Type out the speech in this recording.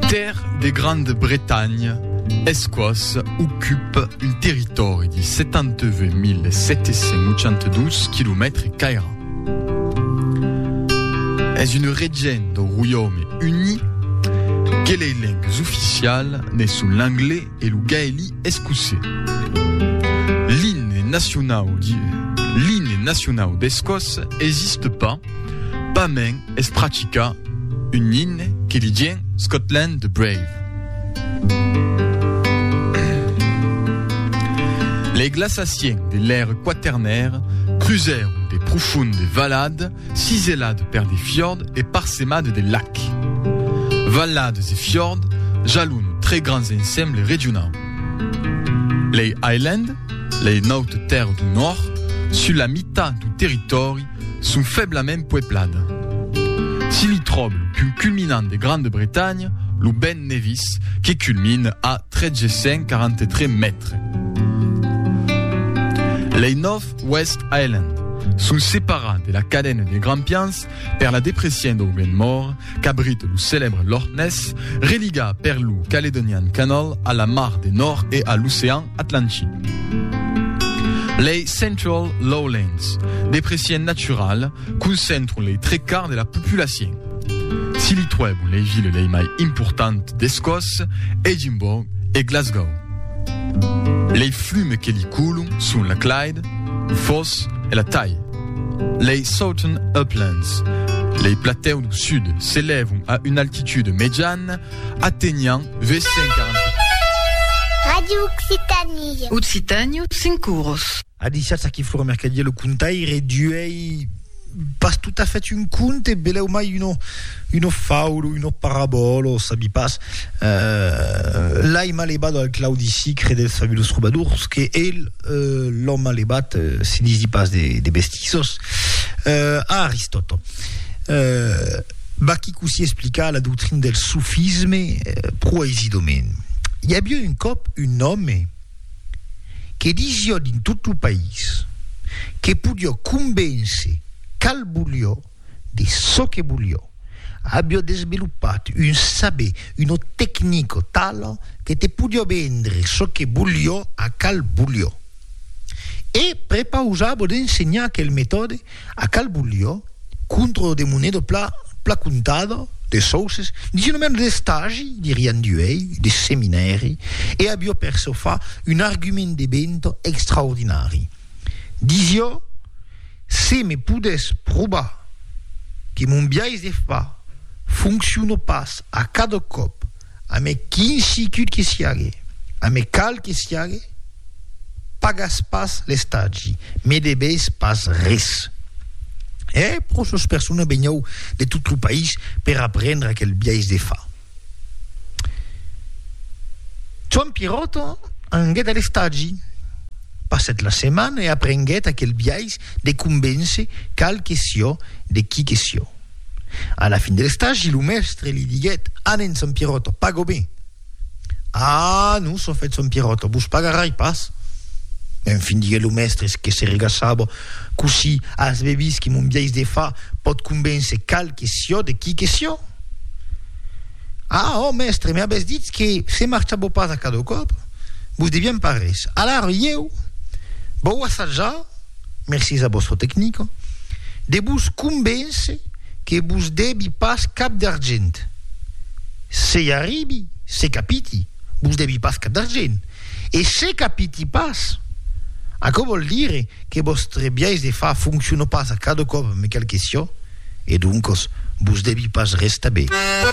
Ter de Grande Bretanha esquòs ocupe un territòri de 78.782 quilomètres cairats. Es un region dau Roiaume Uni que lei lengues oficialas ne son l'anglés, E lo gaèli escocés. L'imne nacionau de l'imne nacionau d'Escòcia existe pas, pas mens es practicà un imne que li dien Scotland the Brave. Les glaçaciens de l'ère quaternèra crusèron de profondes valades, Ciselad per de fiord e parsemad de lac. Vallades e fiord jalon tre grands ensemble regionau. Lei Island, lei naute tèrres du nòrd, sus la mitat du territòri, son feblament pueplada. Si li tròb lo punt culminant de Grande Bretanha, lo Ben Nevis, que culmine a 1.343 mètres. Lei Nòv. West Island, son separat de la cadena de Grampians per la depression dau Glen More, qu'abrite lo celèbre Loch Ness, religa per lo Caledonian Canal a la Mar de Nòrd e a l'Ocean Atlantic. Lei Central Lowlands, depression naturala, concentron lei tre quart de la populacion. Si li tròbo lei vile lei mai importantes d'Escòs, Edimborg e Glasgow. Lei flumes que li coulon son la Clyde, lo Foss e la Tay. Lei Southern Uplands, lei platèus dau sud, s'elèvon a una altitude mejana atenhant 840 mètres. Radio Occitanie. Occitània, cinc uros. A disiatz aquí Flora Mercadier, lo contaire d'uèi pas totafèt un conte, belèu mai una una faula, una parabòla, sabi pas. Euh, l'ai ma levat al Claudi Sicre dels Fabulos Trobadors, que el, euh, l'ò ma levat, se disi pas de de bestisos, euh, a Aristòt. Euh, vaquí cossí explica la doctrina del sofisme pro aisidament. I aviá un còp un òme, que disió dins tot lo país que podió convéncer cal volió de çò que volió, avió desvelopat un saber, una tecnica tala que te podió vendre çò que volió a cal volió. E prepausava d'ensenhar aquel metòde A Calbulho, contra de moneda pla pla comptada, de sòuces, dins un ambient d'estagi, dirián d'uèi, de seminèri, e avió per çò fa un argument de venta extraordinari. Disió, Se me podèss probar que mon biais de far fonciona pas a cada còp A me quin sicut que siague, a me cal que siague, pagas pas l'estagi, me debes pas res. E pro sos persona benhou de tot lo país per aprendre aquel biais de far. Joan Pierrotto anguet a l'estagi, passèt la setmana e aprenguèt aquel biais de convéncer cal que sió de qui que sió. A la fin de l'estagi, lo mèstre li diguèt, Anen, Sant Pieròta, pago ben! Ah, non, son fèt Sant Pieròta, vos pagarai pas! En fin, diguèt lo mèstre, es que se regaçava, cossí as be vist que mon biais de far pòt convéncer qual que sió de qui que sió? Ah, ò mèstre, me avètz ditz que se marchàveu pas a cada còp, vos devián pas res. Alara, ieu vau assajar! mercés a vòstra tecnica, de vos convéncer que vos devi pas cap d'argent. Se i arribi, se capiti, vos devi pas cap d'argent. E se capiti pas, aquò vòl dire que vòstre biais de far fonciona pas a cada còp me cal que siò, e doncas vos devi pas res tabé.